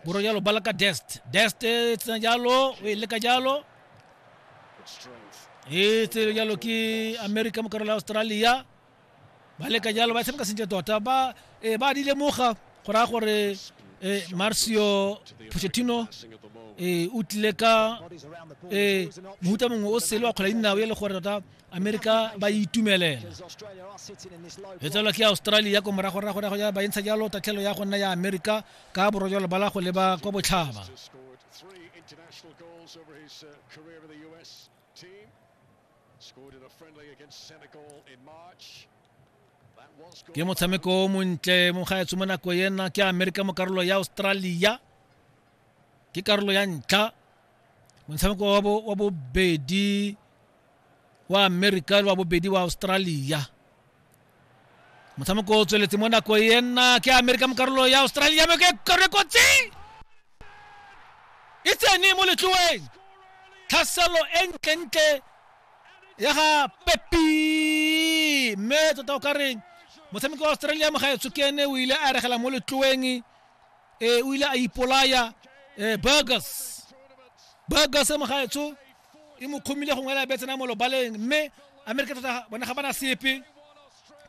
boro jalo bala ka dest dest e tsena jalo o e leka jalo e tsere jalo ke america mo karolo ya australia ba leka jalo ba tshameka sentle tota ba eh, ba di lemoga go raya gore eh, marcio pochettino eh, o tlile ka eh, mohuta mongwe o sele wa kgwela dinao e le gore tota amerika ba itumelela e tselwa ke australia ko moragoragorago ya ba entsha jalo tatlhelo ya go nna ya amerika ka borojalo ba la go leba kwa botlhaba ke motshameko o montle mo gaetsho mo nako ena ke amerika mo karolo ya australia ke karolo ya ntlha motshameko wa bobedi wa amerika le wa bobedi wa australia motshameko o tsweletse mo nako e nna ke amerika mo karolo ya australia me ke karolo e kotsi e tsene mo letloeng tlhaselo e ntlentle ya ga pepi mme tota o ka reng motshameko wa australia mo ga e tsokene o ile a regela mo letloeng e o ile a ipolaya e burgers burgers mo ga etsho e mo kgomile gongwe e la betse na mo lobaleng mme amerika tota bona ga bana sepe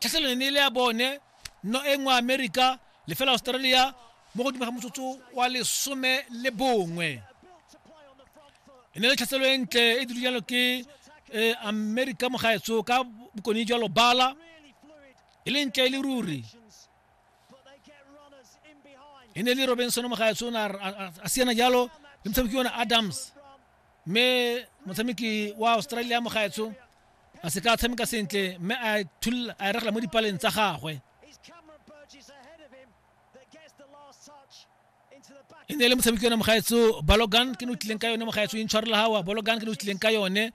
tlhaselone ne e le ya bone no e nngwe amerika lefela australia mo godimo ga motsotso wa lesome le bongwe e ne le tlhaselo e ntle e diru jalo ke eh, amerika mogaetso ka bokone jwa lobala e le ntle e le ruri e ne le robinson mogaetso o ne a siana jalo le motshameki yone adams mme motshameki wa australia mo gaetsho a se ka tshameka sentle mme a thulula a e regela mo dipaleng tsa gagwe e ne e le motshameki yone mogaetso balogan ke ne o tlileng ka yone mogaetso intshwarela gawa balogan ke ne o tlileng ka yone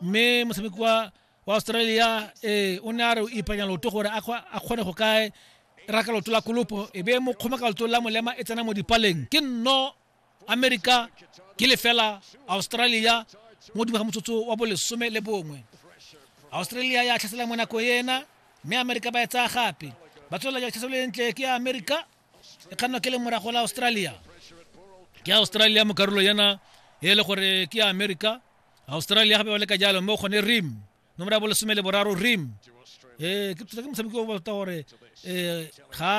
mme motshameki wa wa australia ee o ne a re o ipanya loto gore a kgone go kae raka loto la kolopo e be mo kgoma ka loto la molema e tsena mo dipaleng ke nno amerika ke lefela australia mo dingwe ga motsotso wa bolesome le bongwe australia ya tlhasela mo nako ena mme amerika ba e tsaya gape ba tswelela ja tlhaselo e ntle ke ya amerika e kgannwa ke le morago la australia ke australia mo karolo yana e le gore ke ya amerika australia gape ba leka jalo mme o kgone rim nomoro ya bolesome le boraro rim ee ke tota ke motshameki o bata gore um ga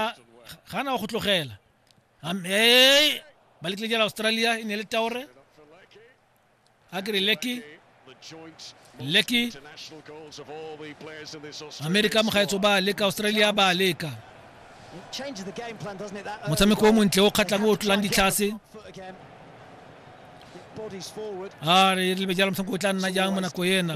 ga na go tlogela ee ba lekile jela australia e ne le taore a kere leki leki amerika mogaetso ba leka australia ba leka motshameko o montle o kgatlhang o tlolang ditlhase a re lebe jalo motlhanko o tla nna jang mo nako ena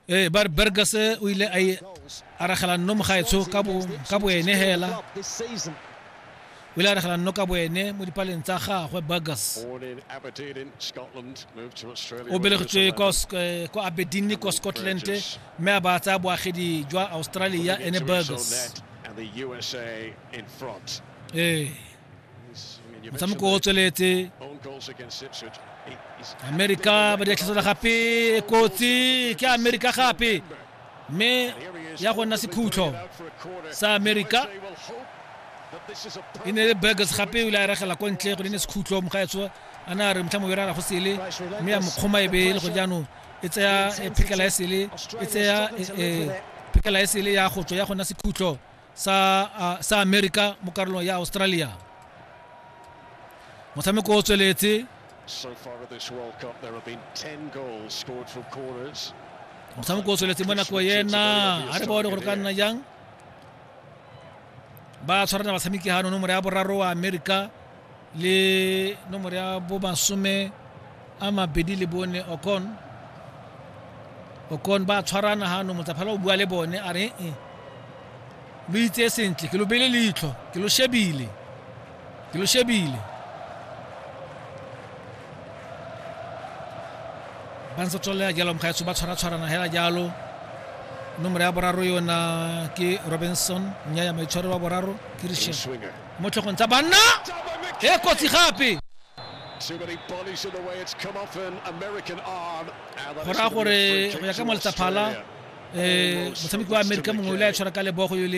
ee ba re burgers o ile a e aragela nno mogaetsho ka boene hela o ile a aragela nno ka boene mo dipaleng tsa gagwe burgers o belegetswe kwa eh, aberdeen kwa scotland mme a ba tsaya boagedi jwa australia ene burgers ee motshameko o tsweletse amerika ba di atlhasela gape kotsi ke amerika gape mme ya go nna sekhutlo sa amerika e ne le burgers gape o ile a regela ko ntle go ne ne sekhutlo mogaetso a na re motlha mo berara go sele mme ya mokgoma e bele go jaanong e tsaya e phekela e sele e tsaya e, e, phekela e sele ya go tswa ya gona sekhutlo sa sa America mo karolong ya Australia motshameko o tsweletse motshameko o tsweletse mo nako ena a re bone gore ka nna jang ba tshwarana batshameki ga none mora ya boraro wa america le nomoro ya bo masome a mabedi le bone okon okon ba tshwarana ga no motsaphala o bua le bone a re e lo itse sentle ke lo bele leitlho ke lo shebile ke lo shebile ba ntse tswelela jalo mokgaetso ba tshwaratshwarana hela jalo nomoro ya boraro yona ke robinson nya ya maitshwaro wa boraro ke richard mo tlhogong tsa banna e kotsi gape go raya gore go ya ka moletaphala um motshameki wa amerika mongwe o ile a tshwara ka lebogo yo le